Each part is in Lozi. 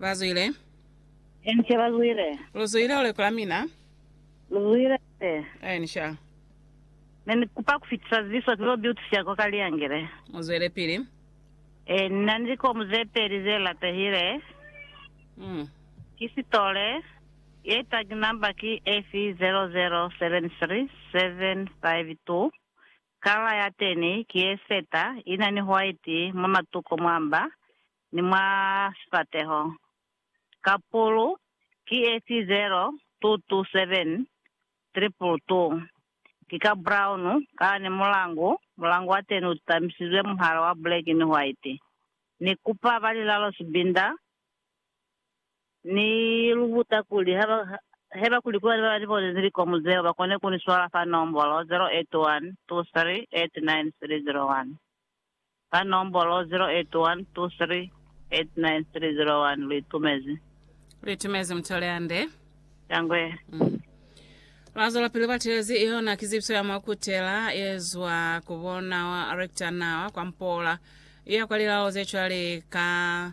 Bazwile. Enca bazwile. Luzwile ule kula mina. Luzwile se. Enca. Ne ni kupa kufitisa ziso zilo biutisya ko ka liangile. Muzwelepili. E, ni na ni likomu ze peli ze latehile. Mm. Ki sitole. Ye tag number ki FE 0073752. Kala ya teni ki ye seta, ina ni hwaiti mwa matuko mwa mba ni mwa sifateho. Kapulu ki efi 0227 222. Ki ka brown kala ni mulangu, mulangu wa teni ututamisizwe muhala wa buleki ni hwaiti. Ni kupa ba lilalo sibinda Ni lu buta kuli haba, heba kuli kube ni bani bonezi likomu zeo, ba kone ku ni swala fa nombolo 0812389301. Fa nombolo 0812389301. Lu itumezi? Lu itumezi, Mutu Leande. Shangwe. Lwa zwelapili lwa telezi yona kizibiso ya mwa kutela ye zwa ku bona Rector na kwa mpola, i ya kwa lilao ze cwale ka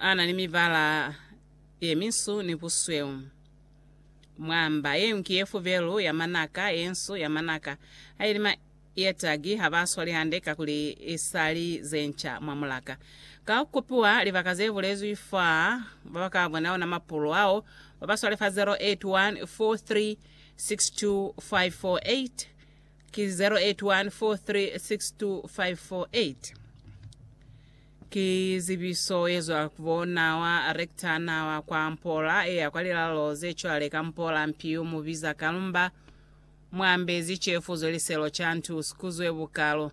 a na ni mibala ye minsu ni busweu. Mwamba yeu ki ye fubelu ya manaka ye nsu ya manaka, haili ma ye tagi ha ba swali hande kakuli i sa li ze nca mwa mulaka. Ka ku kupiwa libaka ze bulezwi fa, ba ba ka bona ona mapulu ao ba ba swale fa 0814362548 Ki 0814362548. Ki zibiso yezwa kubo nawa rector nawa kwa mpola eya kwa lilalo zecwale ka mpola mpiu mubiza kalumba mwambe zicefu zwe liselo cantu sikuzwe bukalo